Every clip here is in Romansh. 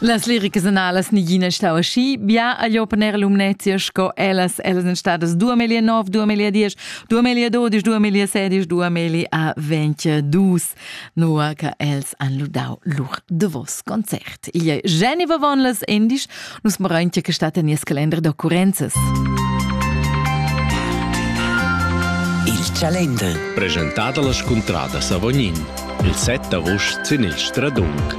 Las liricas analas nigina stau aschi bia a jo per Lumnezia sco ellas ellas en stadas 2009, 2010, 2012, 2016, 2022, nua che els han ludau lur davos concert. Igl ei Jenny Vavon las Indisch Nus morain che stat en nies calender d'occurrenzas. Il calender. Presentat alla scontrada Savognin. Il 7 august sin il Stradung.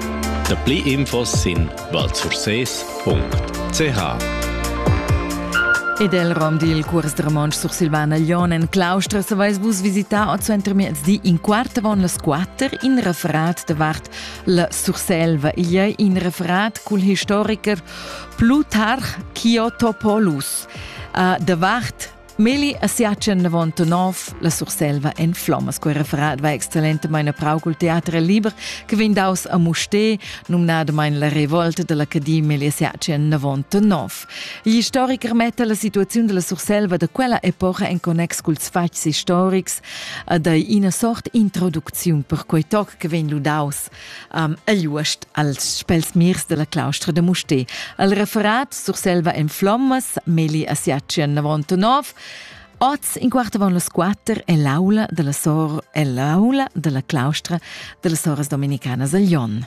Da pli infos sin valsfurses.ch Ed el rom dil cuors da romontsch sursilvana Glion en Claustra saveis vus visitar oz entermiezdi in quart avon las quatter in referat davart La Surselva igl ei in referat cul historicher Plutarch Kyotopoulus. Uh, davart Meli a siachen 99 la Surselva en Flommas. Quei referat va excellentemente prau col teatre liber che vegn daus a Musté, numnadamain la revolta dell'Academia Meli a siachen 99. Gli historicher metta la situazione della Surselva da quella epoca en connex culs fatgs historics ed ei ina sort introducziun per quei toc che vegn ludaus um, egl uost als spels mirs della claustra da Musté. El referat Surselva en flommas, Meli a Siatschen 99, Oz in quart avon las quatter è l'aula della sor è l'aula della claustra della soras dominicanas a Lyon.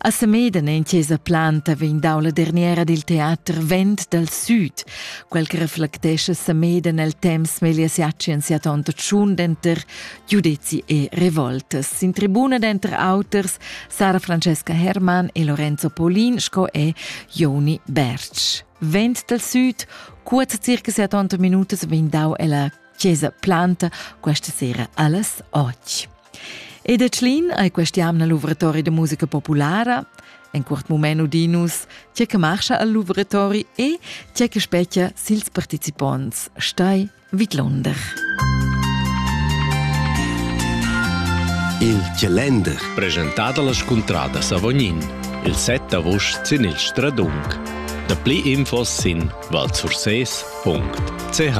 A Semeden en chesa Planta vegn dau la derniera dil teater Vent dal Süd, quel che reflectescha Semeden el temps meglier siacien sia tonta tschun denter giudezi e revoltas. Sin tribuna denter auters Sara Francesca Hermann e Lorenzo Paulin sco e Joni Bertsch. Vent dal Süd, cuort circa sia tonta minutas vegn dau ella chesa Planta questa sera allas 8. E da Tschlin ei quest'jamna luvratori da musica populara, en curt mument udinus, tge che marcha al luvratori e tge che spetgia sils participonts, stai vidlunder. Il Chalender, presentat alla scontrada Savognin, il set d'agost sin il Stradung. Da pli infos sin valsurses.ch.